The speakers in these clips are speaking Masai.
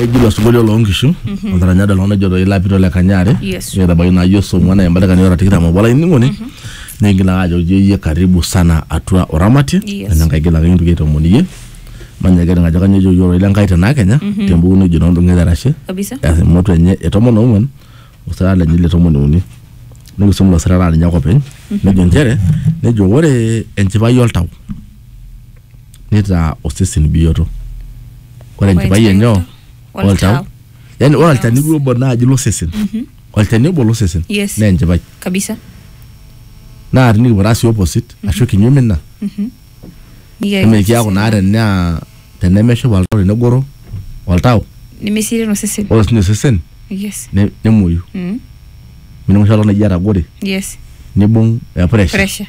eji ilo sinkolio loo nkishu otaranya dalo nejo doi lapito le kanyare Yes. netabaiki naa yie somu ena embata kani ora tikitam obo olainining'oni nigil ake ajoki iyie karibu sana atua oramatie Yes. ena nkae gil ake kintoki aitoomono iyie manya kening ajo kanyoo ejoki ororei le nkai tenaa kenya tembuku nejo noo ndung'eta erashe kabisa emoto enye e tomon oong'uan osirata lenye le tomon uni nikisum ilo sirata aa ninye ake openy nejo nchere nejo ore enchipai oltau neitaa osesen bioto ore enchipai enye o- oltau yani ore olchani duo obo naaji losesen olchani obo losesen Yes. naa enchipai kabisa naa tinikipuo taa sii opposite ashu kinyume ina Nikiaku nimikiaku osesen naa tenaa tenemeshipa oltau tenegoro oltau nemeserian osesen ore sinye osesen yes ne- nemuoyu Mm. minimusho oltau naji etagore yes nibung eh, pressure pressure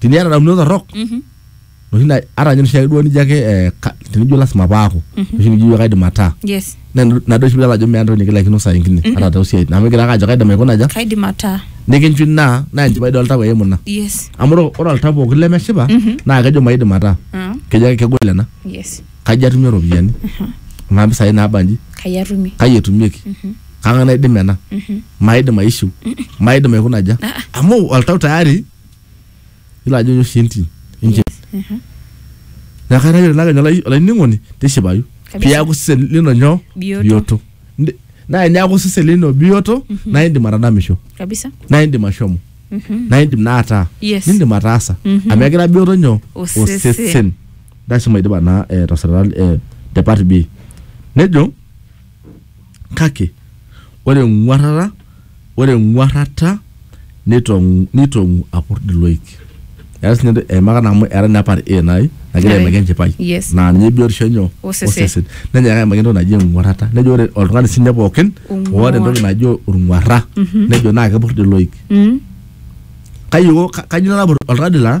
tiniata damunot torrok noshi na ata ninye noshiake duo nijo ake eh, ka- tenijo lasima paaku noshi nijo ijo kaidim ataa yes na nado oshi pidol ajo meeta entoki nikilaikino saa ingine ata tosiai amu igira ake ajo kaidim aikuna aja kaidim ataa nikinchu ina naa enchipai dol tau eimu ina yes amu ore- ore oltau pookin lemeshipa naa kejo maidim ataa Ah, kejo ake kegol ena yes kaji atumie iropiyiani kuna pisai naabanji kai atumie kai etumieki kang'ae naidim ena maidim aishiu maidim aikuna aja amu oltau tayari Ilo ajo oshi entim. Entim. Aha. Neeku kaitaki ilo akenya olai- olainining'oni tishipayu Kabisa. piaku sesen lino nyoo? Bioto. Ndi- Naa eniaku sesen lino bioto naa indim atadamisho Kabisa. naa indim ashomo Mhm. naa indim naa ataa Yes. nindim ataasa Mhm. amu egira bioto nyoo? Osesen. Lasima idipa naa eh, tasirata eh, te part B. Nejo Kake ore eng'uarrata ore eng'uarrata neitong'u neitong'u apurd iloik. Eas ninye entoki eimaka naa amu eeta ninye part A nai nagira aimaki enchipai Yes. naa ninye biotisho enyoo? Osesen. Nenyaaka aimaki entoki naji eng'uarrata. Nejo ore oltung'ani siinye pookin Ong'uar. oata entoki naji olng'uarra nejo naakepurd iloik. Kai iko, kajo ilo napurd oltung'ani laa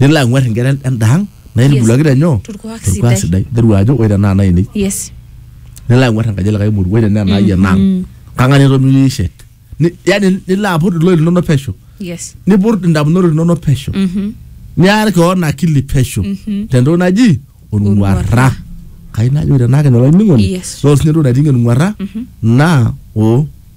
nilo ang'uar inkera endaang naitubuluaki tenyoo Torkuak torkuak sidai. sidai nteru ajo ore tenaa nainei yes nilo ang'uar enkaji elikae muru ore tenaa enaai enaang kang'ae naitomirie shet Ni- yani nilo aput iloik linono pesho yes niput indamunot linono pesho Mhm. niar keon akili pesho tentoki naji olng'uarra Olng'uarra. kai najo ore tenaa kene olainining'oni Yes. naa osinye entoki nating'ie olng'uarra naa o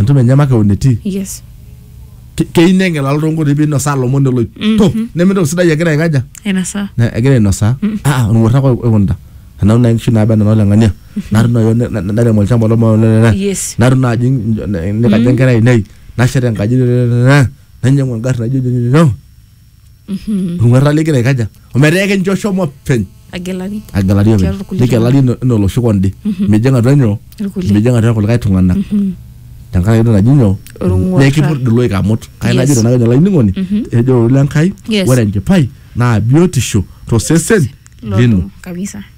entumo enye makeon etii yes Ke- keyieu neng'elaa toonkoitoi pinosaa lomon eloip to nemintoki sidai egira aikaja ainasaa Na- egira ainosaa ah olng'uarra ake oikunita enau naa inkishu naaba enaa oleng'ania natum naaji ne- ne- nairem olchamba lomolelele Yes. natum naaji nikaja enkerai ainei nashet enkaji nainyang'u engarri naijo nyoo olng'uarra ligira aikaja ometaa ekincho shomo openy agelari agelari Tiatua openy irkulie nigelari ino- ina oloshi konde mijing atua nyoo Irkulie. mijing atua kulikae tung'anak tenkaraki entoki naji nyoo Olng'uarra. nekipurd iloik amut kai Yes. najito nake olainining'oni ejo ororei le Nkai Yes. ore enchipai naa biotisho tosesen lino Lodung kabisa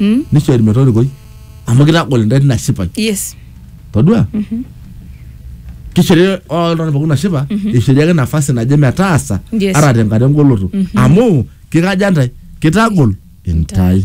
Mm. nishori metorikoi amu kitagol intae tina shipai yes todua kishori oltung'ani pookin nashipa ishori ake nafasi naje metaasa Yes. ata tenkata engoloto amu kikaja ntae kitagol intae